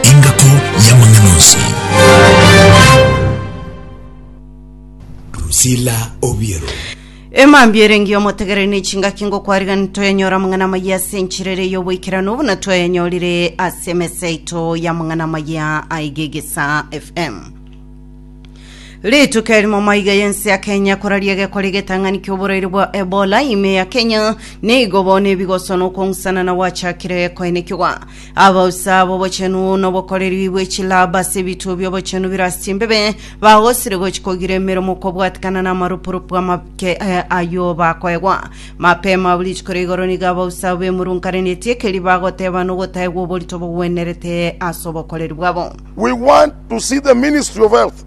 Engako y'amang'ana onsi. Drusilla Obiero. Emambia ere engiya omotegereri ne chingaki ngokwariganire toyanyora amang'ana amaya ase enchera ere y'oboikeranu buna twayanyorire ase emesa yaito y'amang'ana amaya aiga egesa fm rituko erimo maiga yense ya kenya koraria gekore getang'ani ki'oboraire bwa ebola ime ya kenya nigo bono ebigoswa nokong'usana na gwachakire koenekigwa Abausa b'obochenu nobokoreri bwe chilaba ase ebituo bi'obochenu bire ase chimbebe bagosire gochi kogira emeremo kobwatikana n'amarupurupu amake eh, ayio bakoegwa mapema buri rituko ria igoro nigo abausa abo bemurunkanetie ekeri bagoteba nogotaegwa oborito bogwenerete ase obokoreri bwabo We want to see the Ministry of Health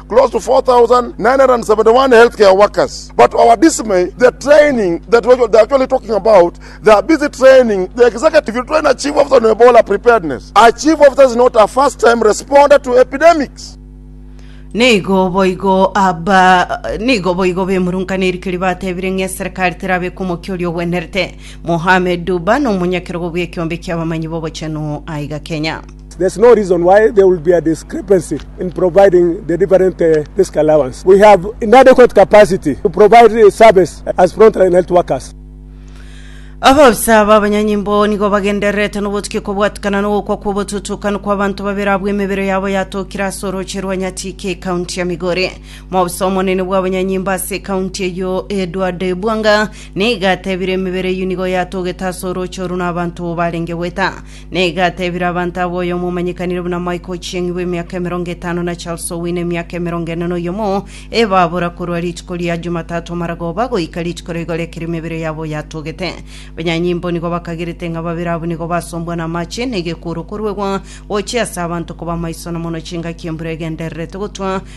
Nigo boigo bemurungana erikiri batebire ng'a eserekari terabe kw'omokia oria ogwenerete. Mohamed Duba nomonyakero bw'ekeombe ki'abamanyi b'obochenu aiga Kenya. Abaofisa b'abanyanyimbo nigo bagendererete nobotukia kobwatikana nogokwa kw'obotutukanu kw'abanto babere abwo emebere yabo yatokire ase orooche rwa Nyatike ekaunti ya Migori. Moofisa omonene bw'abanyanyimbo ase ekaunti eyio Edward Bwanga nigo atebire emebere eyio nigo yatogete ase orooche oru na abanto barenge goeta. Na iga atebire abanto abo oyomo omanyekanire buna Mike Ochieng' bw'emiaka emerongo etano na Charles Owino emiaka emerongo ene na oyomo, ebabora korwa rituko ria Jumatato amaragoba goika rituko ria igoro ekero emebere yabo yatogete. Abanyanyimbo nigo bakagerete ng'a babere abwo nigo basombwa namache na egekuuru koruegwa gochia ase abanto koba amaiso na mono chingaki embura egendererete gotwa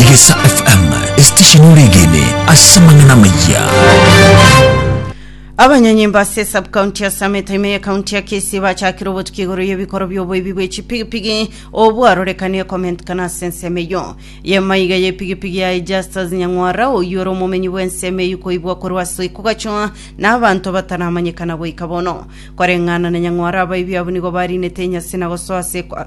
Egesa FM, esitesheni oregene ase amang'ana amaya. Abanyanyimbo ase subcounty ya Summit ime ya county ya Kisii bachakire obotuki igoro y'ebikoro by'oboibi bwe chipigipigi obwarorekanie komentikana ase ensemo eyio y'emaiga y'epigipigi yaye Justus Nyang'wara oyio ore omomenyi bw'ensemo eyio koibwa korwa ase oiko gachoa na abanto bataramanyekana goika bono koreng'ana na Nyang'wara abaibi abwo nigo barinete enyasi na gosoa ase kwa-